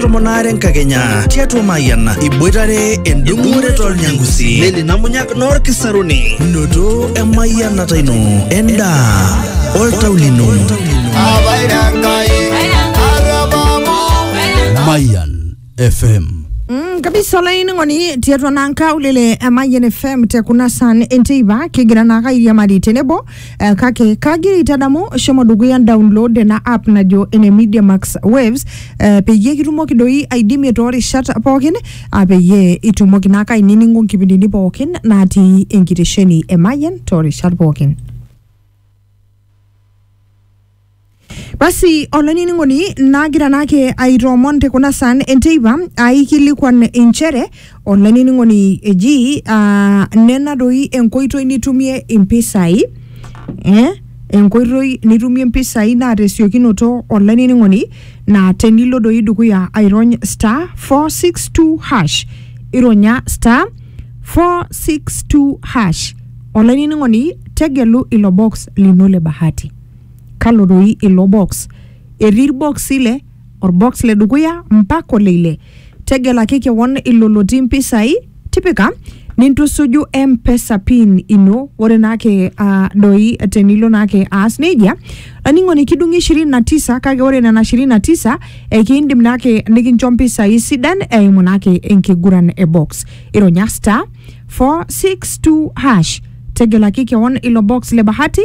tomon aare enkakenya tiatua Mayian iboitare endung'ore tolnyangusi leli namunyak noorkisaruni noto emayianata ino endaa oltau lino Mayan FM. Mm, kabisa olainining'oni tiatua naa nkaulele e Mayian FM te kuna san enteipa kigira naa airiamari tenebo Eh, kake kagira aitadamu shomo dukuya download ena app najo ene Media Max Waves eh, peyie kitumoki doi aidimie toorishat pookin ah, peyie itumoki naa ake ainining'o nkipindini pookin natii enkitesheni e Mayian toorishat pookin. Basi olainining'oni nagira naake aitoomon te kuna saan enteipa aikilikuan inchere olainining'oni eji ah, nena doi enkoitoi nitumie impisai eh, enkoitoi nitumie impisai naa tesiokinoto olainining'oni naa tenilo doi dukuya airony star 462 hash ironya star 462 hash olainining'oni tegelu ilo box lino le bahati. Kalo doi ilo box? Etii ilboksi ile, olbox le dukuya mpaka ole ile. Tegelaki kewon ilo lotii mpisai, tipika nintusuju M-pesa pin ino. Ore naake aa doi tenilo naake aas neijia, olainining'oni kidung'i ishirini na tisa kake ore nena ishirini na tisa ekiindim naake nikincho mpisai sidan eimu naake enkiguran e box. Ironya star, four, six, two, hash. tegelaki kewon ilo box le bahati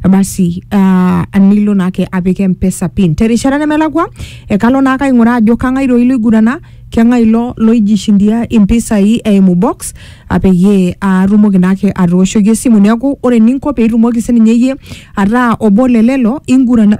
basi uh, nilo naake apik mpesa pin terishata nemelakwa ekalo naake aing'uraa ajo kang'ae doi loigurana keng'ae ilo loijishindia impisai eimu box ah, peyie atumoki naake atooshoki esimu neeku ore eninko peitumoki sininye iyie ataa obo le lelo ingurana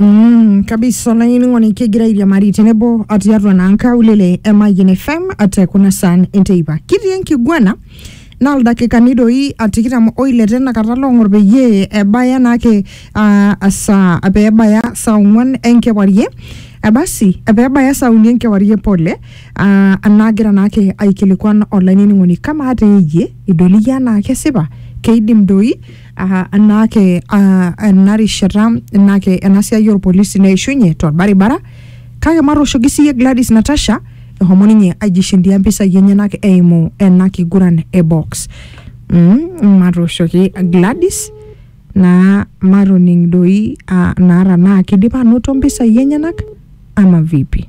Mm, kabisa olainining'oni kigira airiamari tenebo o tiatua naa nkaulele e Mayian FM te kuna saan enteipa. Kitii enkiguana naa ildakikani doi a tikitam oile tenakata loong'or peyie ebaya naake ah, esaa pee ebaya saa ong'wan enkewarie Eh, basi eh, pee ebaya saa uni enkewarie pole ah, naagira naake aikilikuan olainining'oni kamaa teeyie idol iyie anaa kesipa keidim doi aa enaake aa ena rishata enaake ena siai orpolisi neishunye torbaribara kake matooshoki siiyie Gladys Natasha ehomo ninye aijishindia mpisai enyenak eimu ena kiguran e box mm, matooshoki Gladys naa matoning doi aa naa tanaa kidipa anoto mpisai enyenak ama vipi